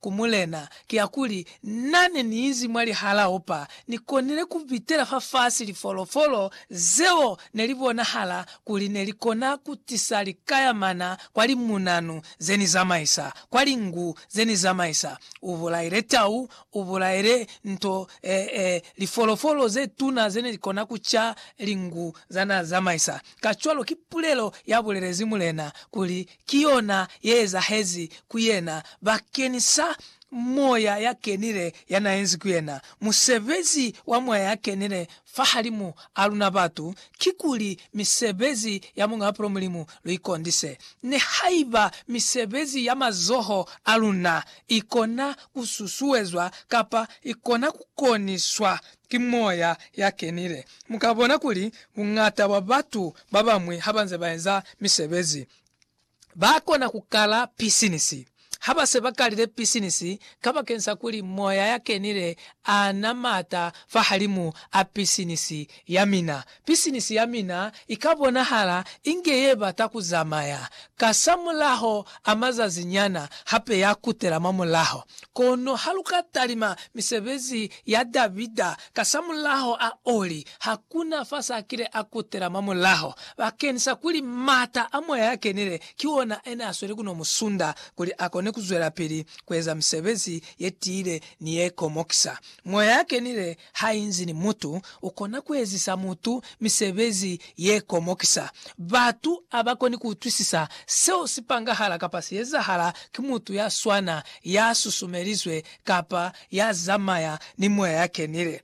ku Mulena kiakuli, Na ne ni inzi mwa lihala opa, ni konile ku pitela fafasi lifolofolo zeo ne li bonahala kuli ne li kona ku tisa likayamana kwa limunanu ze ni zamaisa, kwa lingu ze ni zamaisa. U bulaile tau, u bulaile nto, ee, lifolofolo ze tuna ze ne li kona ku ca lingu za n'a zamaisa. Kacwalo ki pulelo ya bulelezi Mulena kuli Ki yona ye ezahezi ku yena bakeni sa Moya ya Kenile ya na enzi ku yena. Musebezi wa Moya ya Kenile fahalimu a luna batu, kikuli misebezi ya Muñ'a Bupilo Mulimu lu ikondise. Nihaiba misebezi ya mazoho a luna ikona ku susuezwa kapa ikona ku koniswa ki moya ya kenile. Mu ka bona kuli buñata bwa batu ba bañwi ha ba nze ba eza misebezi, ba kona ku kala pisinisi. Ha ba se ba kalile pisinisi kabakeni sa kuli moya ya kenile a na m'ata fahalimu a pisinisi ya mina, Pisinisi ya mina i ka bonahala inge ye bata ku zamaya. Kasamulaho a mazazi nyana, hape ya kutela mwa mulaho. Kono ha lu ka talima misebezi ya Davida kasamulaho a oli, ha ku na fa s'a kile a kutela mwa mulaho, bakeñisa kuli m'ata a Moya ya Kenile ki ona a ne a sweli ku no mu sunda kuli a kone ku zwelapili ku eza misebezi ye tiile ni ye komokisa. Moya ya Kenile Hainzi ni mutu, ukona kuezisa mutu misebezi yekomokisa. Batu abakoni kuutwisisa seo sipangahala kapa siezahala ki mutu yaswana, yasusumelizwe, kapa yazamaya ni moya yakenile.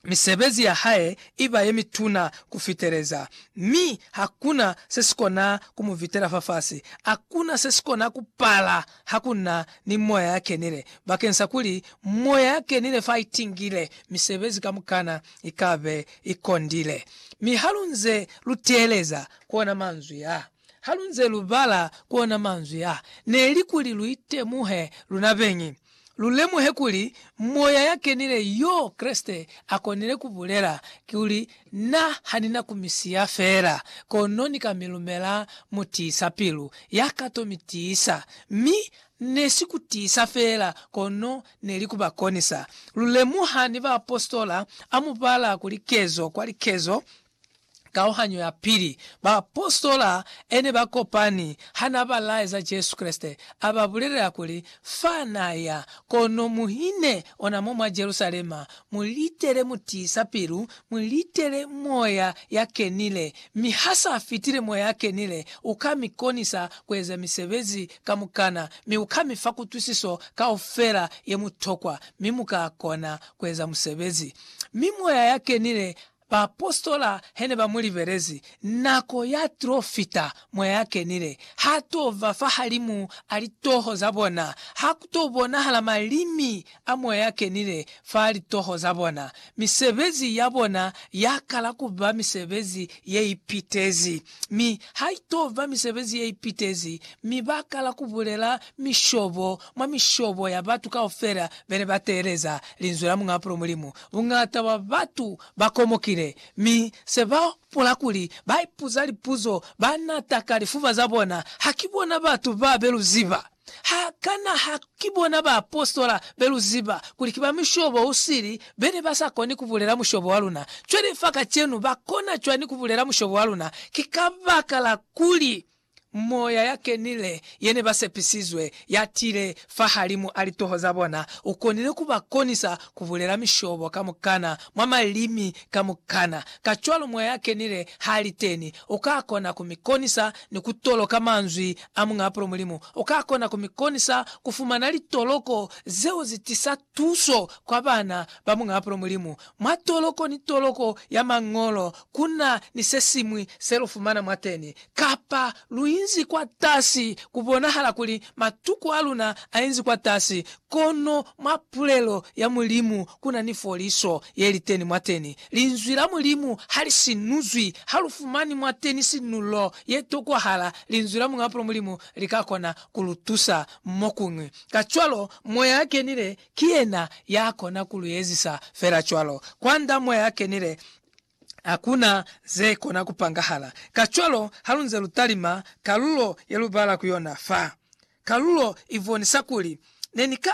Misebezi yahae iba yemituna kufiteleza, mi hakuna sesikona kumuvitela fafasi. Hakuna sesikona kupala Ha ku na ni Moya ya Kenile, bakeng sa kuli Moya ya Kenile fa i tingile, misebezi kamukana i ka be i kondile. Mi ha lu nze lu teeleza ku ona manzwi a, ha lu nze lu bala ku ona manzwi a, ne li kuli lu itemuhe luna beñi, lu lemuhe kuli Moya ya Kenile y'o Kreste a konile ku bulela, kuli Na ha ni na ku mi siya fela, kono ni ka mi lumela mutiisa-pilu ya ka to mi tiisa. Mi ne si ku tiisa fela, kono ne li ku ba konisa. Lu lemuha ni baapositola a mu bala ku likezo kwa likezo, kauhanyo ya pili. Baapositola e ne ba kopani ha na ba laeza Jesu Kreste, a ba bulelela kuli, Fa na ya, kono muhine ona mo mwa Jerusalema, Mu litele mu tiisa pilu, mu litele Moya ya Kenile, mi ha sa fitile Moya ya Kenile, U ka mi konisa ku eza misebezi kamukana, mi U ka mi fa kutwisiso kaufela ye mu tokwa, mi mu ka kona ku eza musebezi. Mi Moya ya Kenile Baapositola he ne ba mu libelezi, nako ya t'o fita mwa ya kenile. Ha t'o ba fahalimu a litoho za bona. Ha ku t'o bonahala malimi a Moya ya Kenile fa litoho za bona. Misebezi ya bona ya kala ku ba misebezi ye ipitezi, mi ha i t'o ba misebezi ye ipitezi, mi ba kala ku bulela mishobo mwa mishobo ya batu kaufela be ne ba teeleza Linzwi la Muñ'a Bupilo Mulimu Buñata bwa batu ba komokile, mi se ba hopola kuli ba ipuza lipuzo ba nata ka lifuba za bona, Ha ki bona batu ba be lu ziba? Ha kana ha ki bona baapositola be lu ziba kuli ki ba mushobo u sili be ne ba sa koni ku bulela mushobo wa luna? Cwale fa kacenu ba kona cwani ku bulela mushobo wa luna? Ki kabakala kuli Moya ya Kenile ye ne ba sepisizwe ya tile fahalimu a litoho za bona, u konile ku ba konisa ku bulela mishobo kamukana mwa malimi kamukana. Kacwalo moya ya Kenile ha li teni, u ka kona ku mi konisa ni ku toloka manzwi a Muñ'a Pulo Mulimu. U ka kona ku mi konisa ku fumana litoloko zeo zi tisa Tuso kwa bana ba Muñaapulo Mulimu, Mwa toloko ni toloko ya Mañolo ku na ni se siñwi se lu fumana mwateni, kapa lu inzi kwatasi. Ku bonahala kuli matuku a luna a inzi kwatasi, kono mwa pulelo ya Mulimu ku na ni foliso ye li teni mwateni. Linzwi la Mulimu ha li sinuzwi. Ha lu fumani mwateni sinulo ye tokwahala, Linzwi la Muñaapulo Mulimu li ka kona ku lu tusa mo kuñwi. Kacwalo, Moya ya Kenile ki yena ya kona ku lu ezisa fela cwalo. Kwand'a Moya ya Kenile, hakuna ze kona ku pangahala. Kacwalo, halunze lu talima kalulo ye lu bala ku yona fa, kalulo i bonisa kuli, Ne ni ka